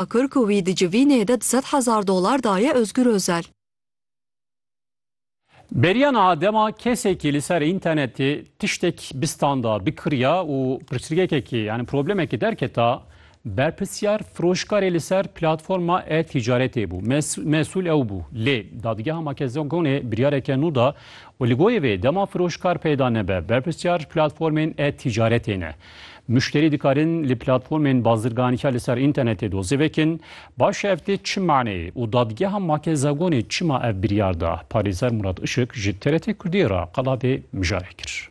Kir ku wî di civînê de du sed hezar dolar daye Ozgur Ozel. Beriya niha dema kesekî li ser întenetê tiştek bistanda, bikiriya û pirsgekekî yanî problemekî derketa, berpirsyar firoşkarê li ser platforma e-tîcaretê bû. Mesûl ew bû. Lê Dadgeha Makedogonê biryareke nû da û li gorî vê dema firoşkar peyda nebe, berpirsyar ji platformên e-tîcaretê ne. Muşterî dikarin li platformên bazirganiya li ser înternetê dozê vekin, baş e ev tê çi maneyê û dadgeha Makezagonê çima ev biryar da? Parêzer Murat Işik ji TRT Kurdiyê re qala vê mijarê kir.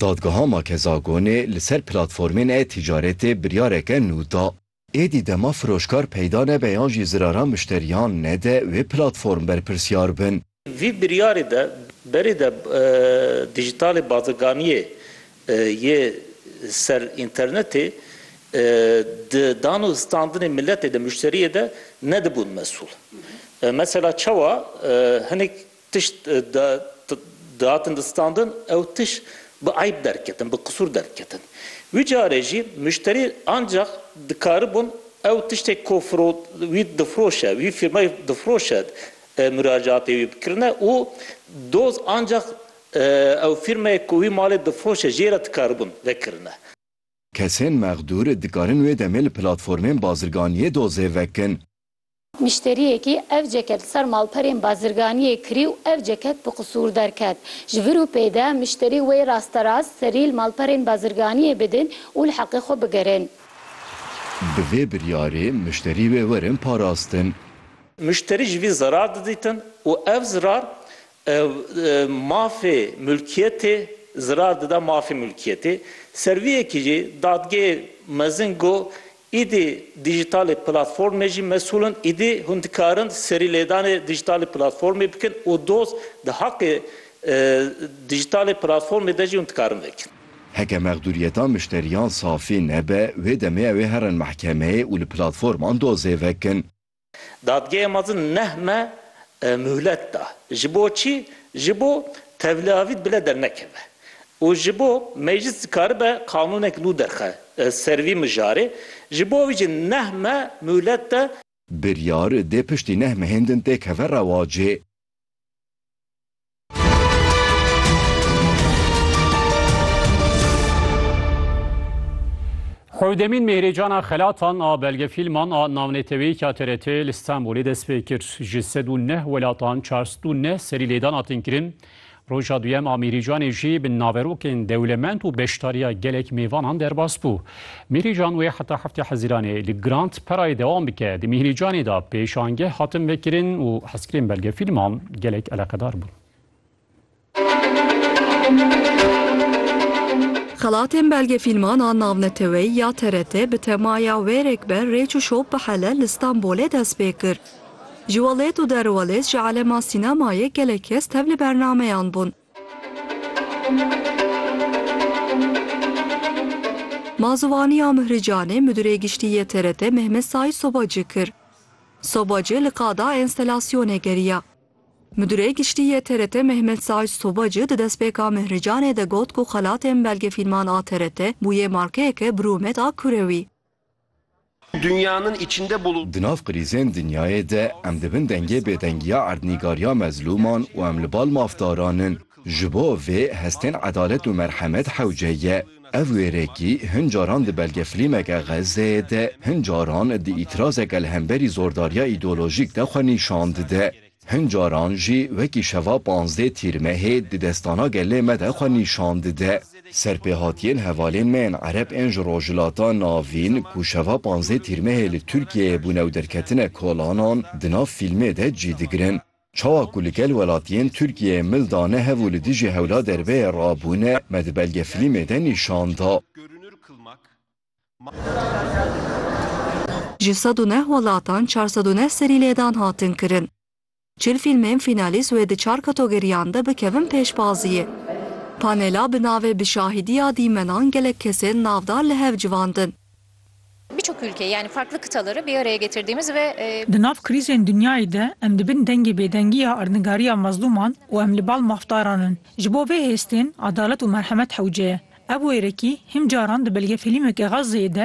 Dadgeha Makezagonê li ser platformên e-ticaretê biryareke nû da. Êdî dema firoşkar peyda nebe yan jî ziraran mişteriyan nede wê platform berpirsyar bin. Vî biryarê de berê de Dîjîtalê Baziganiyê yê ser înternetê di dan û standinê miletê de, muşteriyê de nedibûn mesûl. Mesela çawa hinek Tişt dihatin distandin ew tişt bi eyb derketin, bi qisûr derketin. Wî carê jî muşterî ancax dikaribûn ew tiştê ku wî difiroşe, wî fîrmayê difiroşe muracaatê wî bikirine û doz ancax ew fîrmayê ku wî malê difiroşe jê re dikaribûn vekirine. Kesên mexdûr dikarin wê demê li platformên bazirganiyê dozê vekin. Müşteriyekî ev ceket li ser malperên bazirganiyê kirî û ev ceket bi qisûr derket. Ji vir û pê de müşterî wê rasterast serî li malperên bazirganiyê bidin û li heqê xwe bigirin. Bi vê biryarê müşterî wê werin parastin. Müşterî ji vî zirar didîtin û ev zirar Mafê mulkiyetê zirar dida mafê mulkiyetê. Ser vî yekê jî dadgehê mezin got, Îdî dîjîtalê platformê jî mesûl in, îdî hûn dikarin serîlêdanê dîjîtalê platformê bikin û doz di haqê dîjîtalê platformê de jî hûn dikarin vekin. Heke mexdûriyeta mişteriyan safî nebe, wê demê ew ê herin mehkemeyê û li platforman dozê vekin. Dadgehê mezin neh me muhlet da. Ji bo çi? Ji bo tevliavît bile dernekeve û ji bo meclis dikaribe qanûnek nû derxe ser vî mijarê. Ji bo vî jî neh me muhlet da. Biryar dê piştî neh mehên din têkeve rewacê. Hewdemîn mêhrêcana xelatan a belgefîlman a navneteweyîka TRT li Stenbolê dest pê kir. Ji sed û neh welatan çar sed û neh serî lêdan hatin kirin. Roja duyem a Mîrîcanê jî bi naverokên dewlemend û beşdariya gelek mêvanan derbas bû. Mîrîcan wê heta heftê Hezîranê li Grant perayê dewam bike. Di Mîrîcanê de pêşangeh hatin vekirin û hezkirin belgefîlman gelek eleqedar bûn. Xelatên belgefîlman a navneteweyî ya TRT bi temaya wêrek be rêç û şop bihele li Stenbolê dest pê kir. Ji Welêt û Derwelêt ji alema sînemayê gelek kes tev li bernameyan bûn. Mazûvaniya Mihri Canê Midûrê Giştî yê TRT Mehmet Saîd Sobacî kir. Sobacî li qada enstelasyonê geriya. Midûrê Giştî yê TRT Mehmet Saîd Sobacî di destpêka Mihri Canê de got ku xelatên belgefîlman a TRT bûye markeyeke birûmet a kurewî. Dünyanın içinde bulu. Di nav krîzên dinyayê de em di bin dengê bêdengiya erdnîgariya mezlûman û em li bal mafdaran in. Ji bo vê hestên edalet û merhemet hewce ye. Ev wêrekî hin caran di belgefilîmeke Xezzeyê de, hin caran di îtirazeke li hemberî zordariya îdeolojîk de xwe nîşan dide. Hin caran jî wekî şeva panzdeh Tîrmehê di destana gelê me de xwe nîşan dide. Serpêhatiyên hevalên me yên Ereb ên ji Rojhilata Navîn ku şeva panzdeh Tîrmehê li Tirkiyeyê bûne û derketine kolanan di nav fîlmê de cî digirin. Çawa ku li gel welatiyên Tirkiyeyê mil dane hev û li dijî hewla derbeyê rabûne me di belgefilîmê de nîşan da. Ji sed û neh welatan çar sed û neh serî lêdan hatin kirin. Çil fîlmên fînalîst wê di çar katogeriyan de bikevin pêşbaziyê. Panela bi navê Bi şahidiya dîmenan gelek kesên navdar li hev civandin. Birçok ülke yani farklı kıtaları bir araya getirdiğimiz ve. Di nav krîzên dinyayê de em di bin dengê bêdengî ya erdnigariya mezlûman û em li bal mafdaran in. Ji bo vê hêstên adalet û merhemet hewce ye. Ev wêrekî him caran di belgefîlîmeke Xazzeyê de